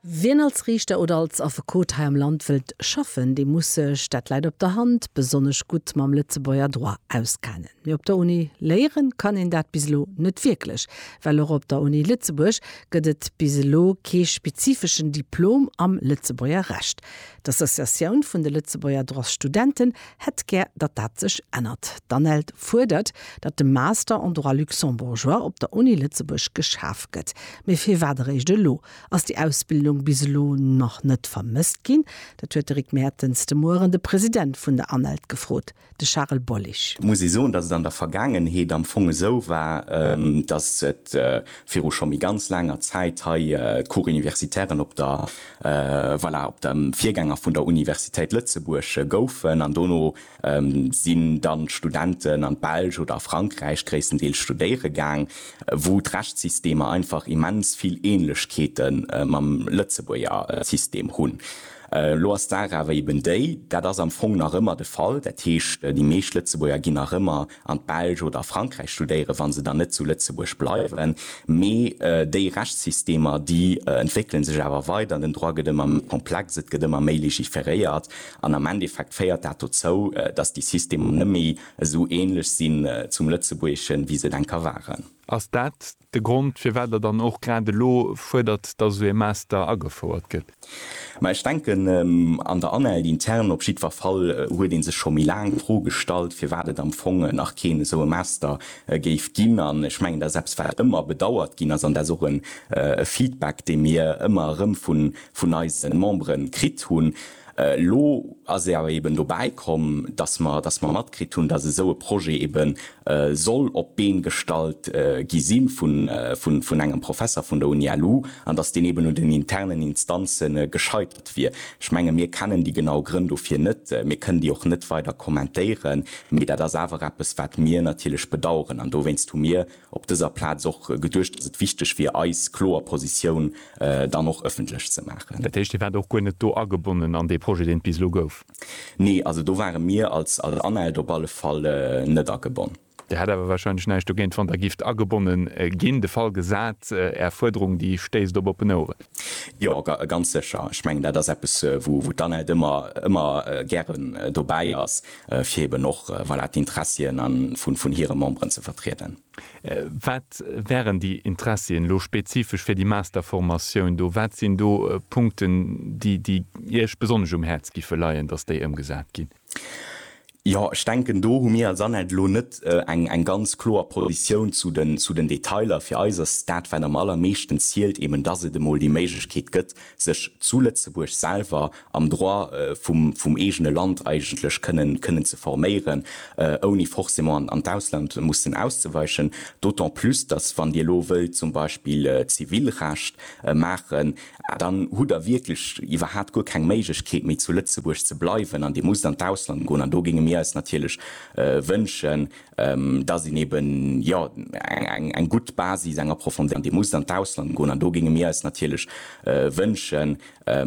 Wien als Riichter oder als Affekot hei am Land wëllt schaffen, dee muss sech, dat läit op der Hand, besonnesch gutt mam Lëtzebuerger Droit auskennen. Mee op der Uni léiere kann een dat bis elo net wierklech, well och op der Uni Lëtzebuerg gëtt et bis elo kee spezifeschen Diplom am Lëtzebuerger Recht. D'Associatioun vun de Lëtzebuerger Droitsstudenten hätt gär, datt dat sech ännert. D'ANELD fuerdert, datt de Master en Droit luxembourgeois op der Uni Lëtzebuerg geschaf gëtt. Mee firwat eréischt elo? Ass déi Ausbildung bis elo nach net vermësst ginn? Dat huet de Rick Mertens de Mueren de President vun der ANELD gefrot, de Charel Bollig. Et muss ee soen, datt et an der Vergaangenheet am Fong esou war, datt et viru scho méi ganz laanger Zäit hei d'Cours universitairen op der. Voilà, op dem Virgänger vun der Universitéit Lëtzebuerg goufen an dono sinn dann d'Studenten an d'Belsch oder a Frankräich gréisstendeels studéiere gaang, wou d'Rechtssystemer einfach immens vill Ähnlechkeete mam Lëtzebuerger System hunn. Elo ass d'Saach awer eben déi, dat ass am Fong nach ëmmer de Fall, dat heescht déi meescht Lëtzebuerger ginn nach ëmmer an d'Belsch oder a Frankräich studéieren, wa se dann net zu Lëtzebuerg bleiwen. Mee déi Rechtssystemer, déi entwéckele sech awer weider, den Droit gëtt ëmmer méi komplex, et gëtt ëmmer méi legiferéiert an am Endeffekt féiert dat dozou, datt déi Systemer net méi esou änlech sinn zum Lëtzebuergeschen, wéi se et enker waren. Ass dat de Grond, firwat Der dann och grad elo fuerdert, dass esou ee Master agefouert gëtt. Mä ech denken, an der Année aide interne op jiddwer Fall huet ee sech scho méi laang d'Fro gestallt, firwat et am Fong nach keen esou e Master géif ginn. An ech mengen, dat ass eppes, wat ëmmer bedauert ginn ass. An dat ass och e Feedback, dee mir ëmmer erëm vun eise Membere kritt hunn. Elo ass et awer eben dobäi komm, dass mer, dass mer matkritt hunn, dass esou e Projet eben soll op d'Been gestallt gi si vun, vun, vun engem Professer vun der UniLu an dass deen eben un den internen Instanze gescheitert wier. Ech menge mir kennen déi genau Grënn dofir net, mir kënnen déi och net weider kommentéieren, mee dat ass awer eppes wat mir natierlech bedauern an dowéinst hu mir op dëser Plaz och geduecht, dass et wichteg wier, eis kloer Positioun dann och ëffentlech ze maachen. Dat heescht, Dir waart och guer net do agebonnen an dee Projet, deen et bis elo gouf? Nee, also do ware mir als ANELD op alle Fall net agebonn. Dir hätt awer warscheinlech näischt dogéint, wann Der gifft agebonne ginn, de Fall gesat, Är Fuerderung, déi stéisst op oppen Oueren? Jo, ganz sécher. Ech mengen, dat ass eppes, wou d'ANELD ëmmer gären dobäi ass. fir eben och voilà, d'Interessien vun hire Memberen ze vertrieden. Wat wären déi Interessien elo spezifesch fir déi Masterformatioun do? Wat sinn do Punkten, déi Iech besonnesch um Häerz géife leien, dass déi ëmgesat ginn? Jo, ech denken, do hu mir als ANELD elo net eng ganz kloer Positioun zu den Detailer. Fir eis ass dat, wat am allermeeschten zielt, eben dass et emol déi Méiglechkeet gëtt, sech zu Lëtzebuerg selwer am Droit vum vum eegene Land eigentlech kënnen kënnen ze forméieren, ouni forcément an d'Ausland mussen auszeweichen, d'autant plus, datt wann Dir elo wëllt zum Beispill Zivilrecht maachen, dann hutt Der wierklech iwwerhaapt guer keng Méiglechkeet méi zu Lëtzebuerg ze bleiwen an Dir musst an d'Ausland goen. An do géinge mir eis natierlech wënschen, datt een eben jo eng eng eng gutt Basis, eng Approfondéi. Dir musst an d'Ausland goen an do géinge mir eis natierlech wënschen,